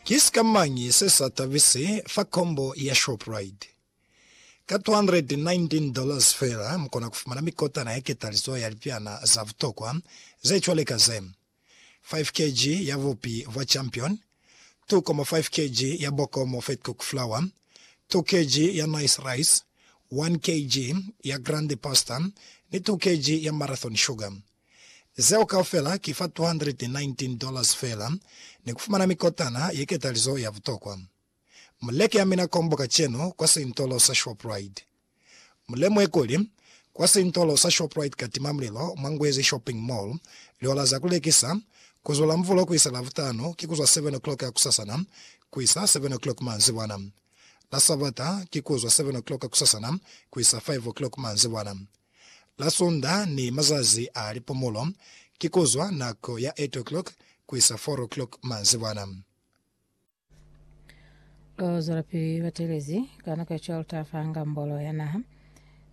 Ki sikamañi se sa tabisi fa kombo ya Shoprite? Ka $219 feela mu kona ku fumana mikotana ya ketalizo ya lipiana za butokwa ze cwale ka ze, 5 kg ya bupi bwa Champion, 2.5 kg ya Bokomo Fat Cooked Flour, 2 kg ya Nice Rice, 1 kg ya Grande Pasta ni 2 kg ya Marathon Sugar. Zeo kaufela ki fa $219 dollars feela ni kufumana mikotana ye ketalizo ya butokwa. Mu leke amina kombo kacenu kwa sintolo sa Shoprite. Mu lemuhe kuli, kwa sintolo sa Shoprite ka timamulilo mwa Ngwezi Shopping Mall, lihola za ku lekisa, ku zwa Lamvulo ku isa Lavutanu ki ku zwa 7 o'clock ya kusasana ku isa 7 o'clock manzibwana. La Sabata ki ku zwa 7 o'clock kusasana ku isa 5 o'clock manzibwana. La Sonda ni mazazi a lipumulo, ki kuzwa nako ya 8 o'clock kuisa 4 o'clock manzibwana. Ku zwelapili batelezi ka nako ya cwalutatu fa Ngambolo ya Naha,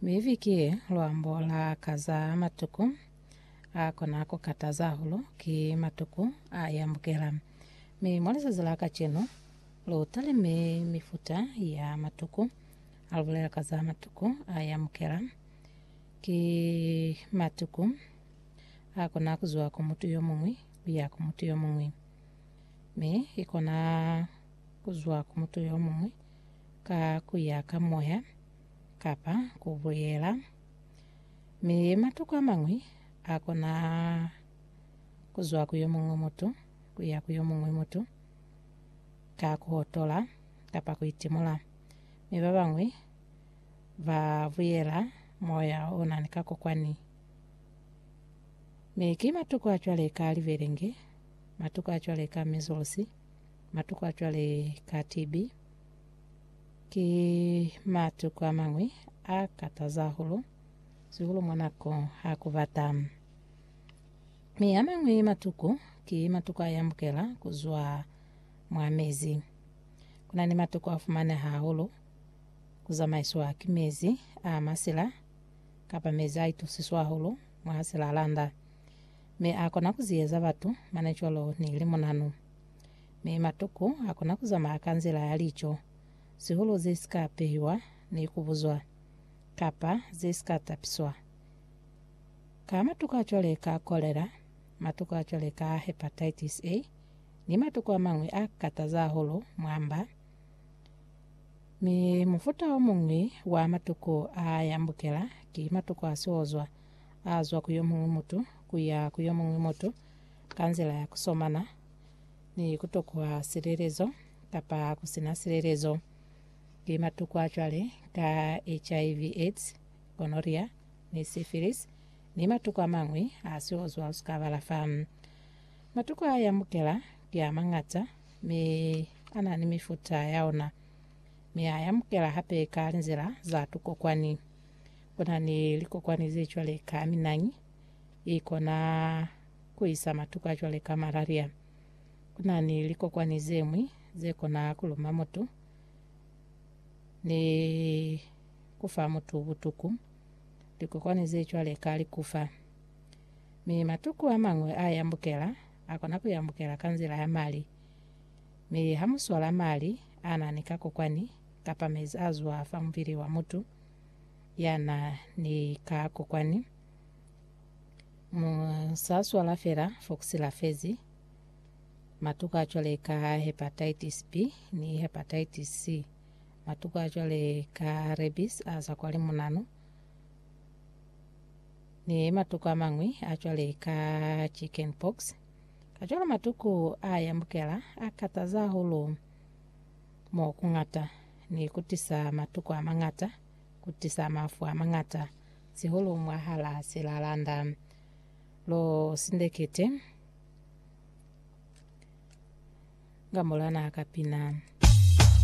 mi ifi ki lwambo la ka za matuku a kona ku kataza hahulu ki matuku a yambukela. Mi mwa lizazi la kacenu, lu talime mifuta ya matuku. Ha lu bulela ka za matuku a yamukela, ki matuku a kona ku zwa ku mutu yo muñwi ku ya ku mutu yo muñwi. Mi i kona ku zwa ku mutu yo muñwi ka ku ya ka moya kapa ku buyela. Mi matuku a mañwi a kona ku zwa ku yo muñwi mutu ku ya ku yo muñwi mutu ka ku hotola kapa ku itimula. mi ba bañwi ba buyela moya o na ni kakokwani. Mi ki matuku a cwale ka libelenge, matuku a cwale ka measles, matuku a cwale ka TB. Ki matuku a mañwi a kataza hahulu, sihulu mwa nako ha ku bata. Mi a mañwi matuku ki matuku a yambukela ku zwa mwa mezi. Ku na ni matoko a fumaneha hahulu ku zamaiswa ki mezi a masila kapa mezi a itusiswa hahulu mwa silalanda, mi a kona ku ziyeza batu mane cwalo ni limunanu. Mi matoko a kona ku zamaya ka nzila ya lico, sihulu ze si ka pehiwa ni ku buzwa, kapa ze si ka tapiswa. Ka matoko a cwale ka kolera, matoko a cwale ka hepatitis A, ni matuku a mañwi a kataza hahulu mwa mba, mi mufuta o muñwi wa matuku a yambukela ki matuku a siozwa a zwa ku yo muñwi mutu ku ya ku yo muñwi mutu ka nzila ya ku somana ni ku tokwa silelezo kapa ku si na silelezo. Ki matuku a cwale ka HIV, AIDS, gonorrhea, ni syphilis, ni matuku a mañwi a siozwa u si ka balafa. Matuku a yamukela ki a mañata, mi a na ni mifuta ya ona. Mi a yamukela hape ka linzila za tukokwani. Ku na ni likokwani ze cwale ka minañi, i kona ku isa matuku a cwale ka malaria. Ku na ni likokwani ze ñwi ze kona ku luma mutu ni ku fa mutu butuku, likokwani ze cwale ka likufa. Mi matuku amañwi a yambukela, akona ku yambukela ka nzila ya mali. Mi ha mu swala mali a na ni kakokwani, kapa mezi a zwa fa mubili wa mutu ya na ni kakokwani, mu sa swala fela fo ku silafezi. Matuku a cwale ka Hepatitis B ni Hepatitis C, matuku a cwale ka Rabies a za kwa limunanu. ni matuku a mañwi a cwale ka chicken pox. Kacwalo matuku a yambukela a kataza hahulu mo ku ñata ni ku tisa matuku a mañata, ku tisa mafu a mañata, sihulu mwahala silalanda. Lu sindekete nga mulana ka pina.